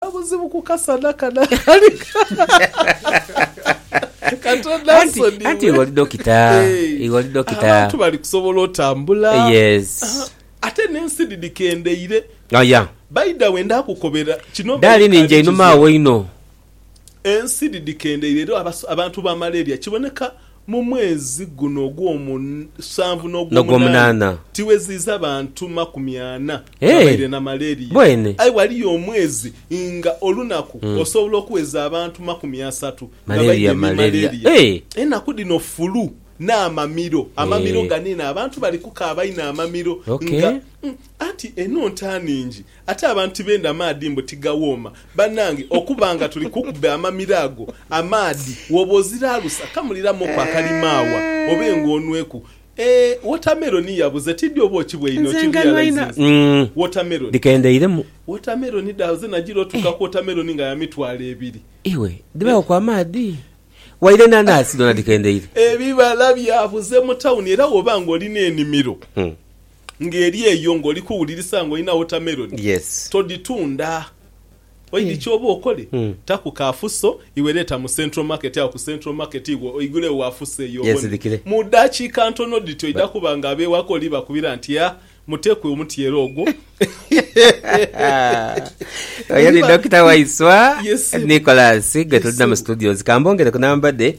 Obuzibu ku kasana kano akali kato Nansoni. Anti iwe oli dokita. Iwe oli dokita. Abantu bali kusobola otambula. Yes. Ate nensi dhidi kendeire. Oh yeah. By the way ndakukobera kino. Darling nze inuma wo inho. Ensi dhidi kendeire era abantu ba malaria kiboneka Mu mwezi guno ogwomusanvu n'ogwomunaana tiweziiza bantu makumi ana babaire na malaria. Aye ghaliyo omwezi nga olunaku osobola okuweza abantu makumi asatu nga baidhye ni malaria. Enaku dhino fulu n'amamiro, amamiro ganiina, abantu bali kukaaba inho amamiro nga anti eno nta ningi. Ate abantu tibenda maadhi mbu tigawooma. Banange okuba nga tuli kukube amamiro ago amaadhi woba oziralusa kamuliramuku akalimaawa obe nga onweku eeh watermelon yabuze tidhi oba okibweine okirealizinze watermelon watermelon dhabuze nagira otuuka ku watermelon nga ya mitwalo ebiri ebibala byabuze mu town era woba nga olina enimiro. Nga eri eyo nga oli kuwulirisa nga olina watermelon, todhitunda. Oidhi kyooba okole, taku ka fuso iwe leeta mu central market agho ku central market iwe oigule gho wafuso eyo obone. Mu dakiika ntono dhiti oidha kuba nga ab'ewaka oli bakubira nti ha muteku omutyeere ogwo. Oyo ni Dokita Waiswa Nicholas gwe tulina mu studios. Ka mbongereku namba dhe.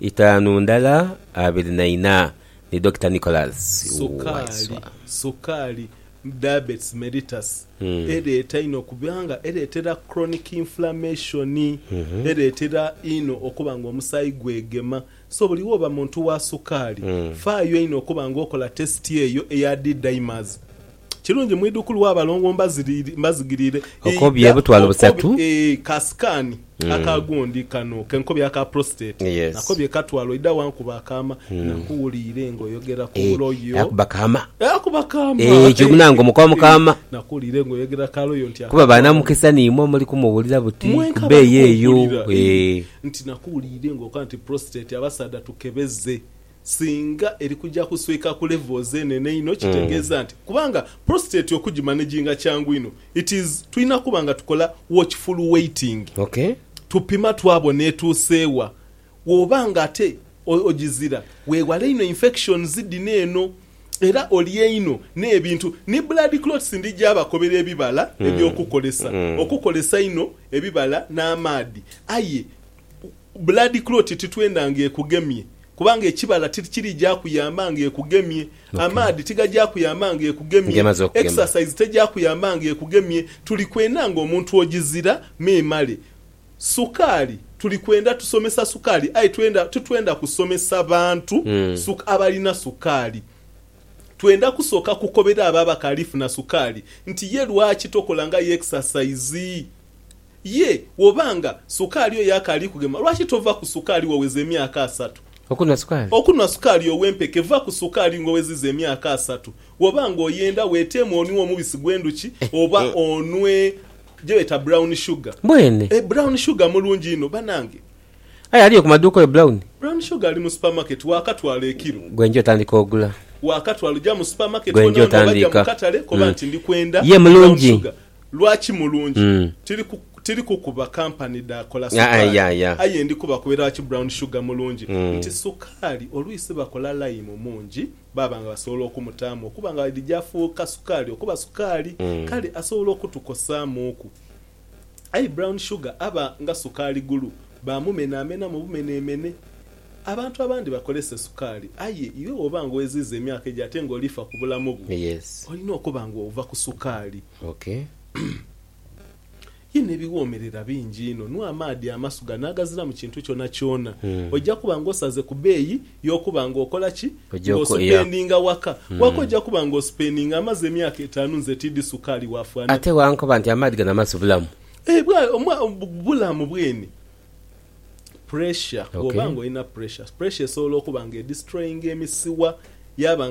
Itaanu ndala abiri na ina ni Dokita Nicholas Waiswa. Sukaali, sukaali, diabetes mellitus, ereeta inho kubanga ereetera chronic inflammation. Ereetera inho okuba nga omusaayi gwegema. So buli woba muntu wa sukaali, faayo inho okuba nga okola test eyo eya D-dimers. Kirungi mwidhukulu wa balongo mbazigirire Okobye obutwalo busatu. Eeh ka scan aka gundi kano kenkobye aka prostate Yes. nakobye katwalo idha wankuba akaama nakuwuliire nga oyogera ku Eh, loyo yakuba kaama. Yakuba kaama Eh, ekyo munange omukowa mu kaama. Nakuwuliire nga oyogera ka loyo nti Kuba akatwalo banamukisa nimwo muli kumuwulira buti mwenka kuba abali eyo eyo. kumpulira Eh. Eh. Nti nakuwuliire nga okoba nti prostate abasaadha tukebeze. Singa eri kuja kuswika ku levels enene einho kitegeeza nti kubanga prostate okugimanaginga kyangu inho it is tulina kuba nga tukola watchful waiting tupima twabona etuuse wa. Woba nga ate ogizira wewale inho infections dhino eno era olye inho n'ebintu ni blood clots ndija bakobera ebibala eby'okukolesa okukolesa inho ebibala n'amaadhi aye Blood clot titwenda nga ekugemye kubanga ekibala tikiri gya kuyamba nga ekugemye, amaadhi tigagya kuyamba nga ekugemye, exercise tegya kuyamba nga ekugemye, tuli kwenda nga omuntu ogizira memale. Sukaali tuli kwenda tusomesa sukaali aye twenda titwenda kusomesa bantu suka abalina sukaali. Twenda kusooka kukobera abo abakaali funa sukaali nti ye lwaki tokola nga ye exercise. Ye woba nga sukaali oyo akaali kugema, lwaki tova ku sukaali waweza emyaka asatu? Okunwa sukaali. Okunwa sukaali ow'empeke, va ku sukaali ng'oweziza emyaka asatu. Woba nga oyenda, weteemu onwe omubisi gw'endhuki oba onwe gyebeeta brown sugar. Mbwene. E, brown sugar mulungi inho, banange. Aye aliyo ku maduuka oyo brown? Brown sugar ali mu supermarket, waakatwala ekilo. Gwe nja otandika ogula. Waakatwala, oja mu supermarket Gwe nja kona, oba oja mu otandika. katale, koba Mm. nti ndi kwenda Ye brown mulungi. sugar. Lwaki mulungi? Tiri ku tiri kukuba kampani dha kola sukaali, aye ndi kubakuba lwaki brown sugar mulungi nti sukaali olwisi bakola layimu mungi baaba nga basobola okumutaamu okuba nga dhija afuuka sukaali okuba sukaali kale asobola okutukosaamuuku. Aye brown sugar aba nga sukaali gulu baamumenamenamu bumenemene. Abantu abandi bakozesa esukaali, aye iwe bw'oba nga oweziiza emyaka egyo ate nga olifa ku bulamu bwo, olina okuba nga ova ku sukaali. Ye n'ebiwoomerera bingi inho, nwa amaadhi amasuga n'agaziramu kintu kyonakyona, oja kuba nga osaze ku beeyi y'okuba nga okola ki? Nga osupendinga waka. Waka oja kuba nga osupendinga amaze emyaka etaanu nze tiidhi sukaali waafana. Ate wankoba nti amaadhi gano amasu bulamu. Eeh bulamu bweni. Pressure, bwoba nga olina pressure, pressure esobola okuba nga edestroyinga emisiwa yaba nga.